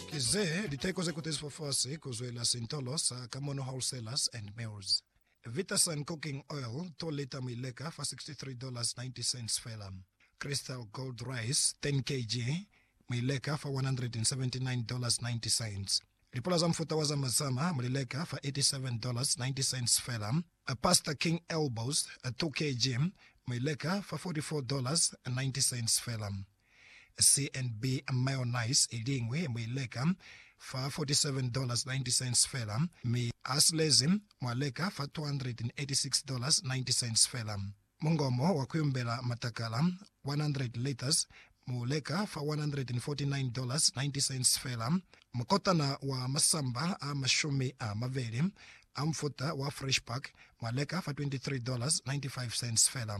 Ki ze liteko ze kutezi fafasi ku zwela sintolo sa Kamono Wholesalers and Mills. Vitasun Cooking Oil, 2 lita mi leka fa $63.90 fela. Crystal Gold Rice, 10 kg, mi leka fa $179.90. Lipula za mufuta wa Zama Zama mu li leka fa $87.90 fela. Pasta King Elbows, 2 kg, mi leka fa $44.90 fela. CNB mayonnaise i liñwi mu i leka fa $47.90 fela, mi a silezi mwa leka fa $286.90 fela. Mungomo wa ku yumbela matakala, 100 litres, mu leka fa $149.90 fela. Mukotana wa masamba a mashumi a mabeli a mufuta wa Fresh Pack mwa leka fa $23.95 fela.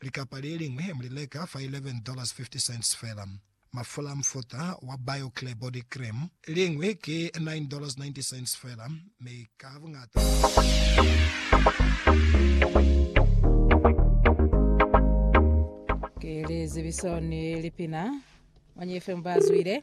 Likapa le liñwi mu li leka fa $11.50 fela. Mafula a mufuta wa BioClear Body Cream liñwi ki $9.90 fela, mi ka buñata Ki lizibiso ni lipina. Manyi FM ba zwile.